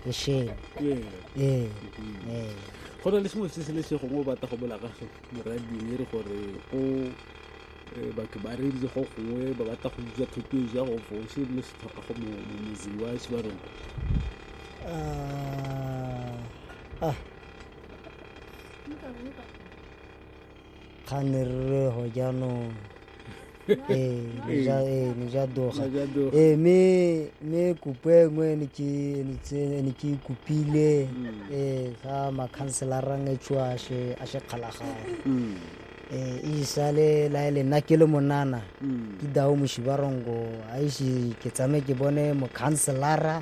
esheng ee ee go na le sengwe se se le se gongwe o batla go bola ka so morading e re gore o eh, batho ba reditse go gongwe ba batla go utswa thuto e ja go fo se le se tlhoka go motseng wa se ba rona ah ah ga ne re go jaanong ee ne ja doga ee mme mme kopo e nngwe ne ke ne tse- ne ke kopile ee ga makhanselarang e tswa a se a se kgalagala ee e isale la e le nna ke le monana ke dao moshibarongo a ise ke tsame ke bone mokhanselara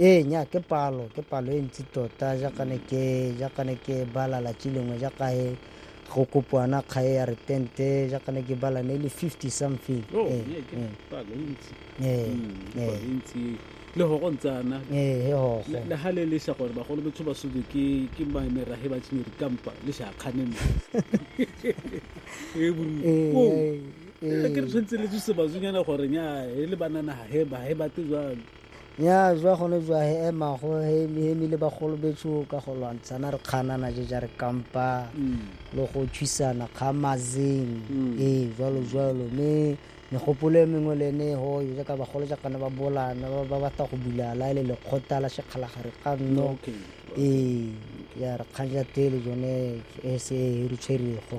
ee nya ke palo ke palo e ntsi tota jaaka ne ke jaaka ne ke bala latsi lengwe jaaka he go kopoana kgae ya retente jaaka ne ke bala ne le 50 something Oh, Ee, yeah, ke ee, palo e ntsi. ee, Mm, ke ee, palo e ntsi. le gogo ntse ana ee, he gogo Le- le ha le lesha gore bagolo betho ba sobe ke ke mamerage ba tšhimeri kampa le sha kganeme e buru Ee, Oh, ee, ee. ke re tshwanetse le tsuse bazonyana gore nya e le banana ha he ba he bate jwang Nya jwa gone jwa he ema go he hemi le bagolo betsho ka go lwantshana re kganana je ja re kampa le go tshwisana kga mazeng e jwalo jwalo me megopolo e mengwe le ne ho yo ka bagolo ja kana ba bolana ba ba batla go bulala le le khota la shekhala gare ka nno e ya re kganja tele jone e se e re tshwerego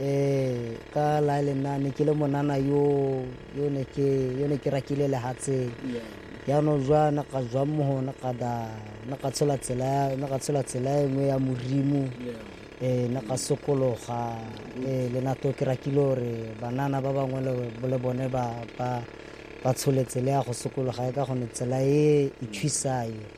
Ee, ka la le nna ne ke le monana yo yo ne ke yo ne ke rakile lehatseng yaanong jwa na ka jwang mo gona ka da na ka tshola tsela ya- na ka tshola tsela e nngwe ya morimo ee na ka sokologa ee le nato ke rakile gore banana ba bangwe le- le bone ba ba ba tshole tsela ya go sokologa e ka gone tsela e e thusayo